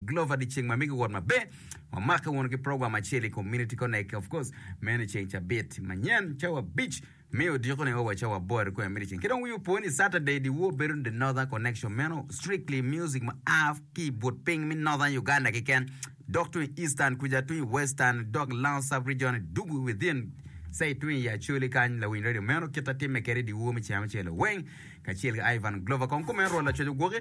Glover di ceng ma mege wot maber wamake wunu ki program acel i community connect of course meno i ceng cabit manyen cawa abic me odiko ne owa cawa aboro ikome miti ceng ki dong wiu po ni Saturday di war bedo the northern connection meno strictly music ma a ki i but piny me northern Uganda kiken dok tung i eastern kuja tung i western dok lango sub region dug within say tung i Acholi kany lawiny radio meno kit atimme kede di war me ceng ma celo weng kacel ki Ivan Glover kong kumeno rwot lacoc ogwoki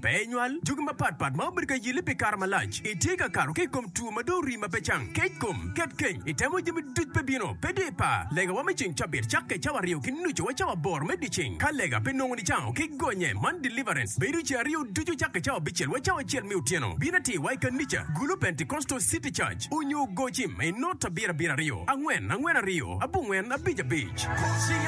Pe inywal jogi mapat pat ma obedo ka yelli pi kare malac. Itye ka kato ki i kom two ma dong orii ma pe cang, kec kom, ket keny, itemo jami duc pe bino. Pe dye ipar, legawa me ceng cabit cakke cawa aryo ki nucu wa cawa aboro me dyeceng. Ka lega pe nongo nicango ki gonye, man deliverance, bedo ceng aryo ducu cakke cawa abicel wa cawa acel me otyeno. Bin atir wa i kanica, Gulu Pentecostal City Church, onyo Gocim, inota bir abir aryo, angwen, angwen aryo, abongwen, abic abic.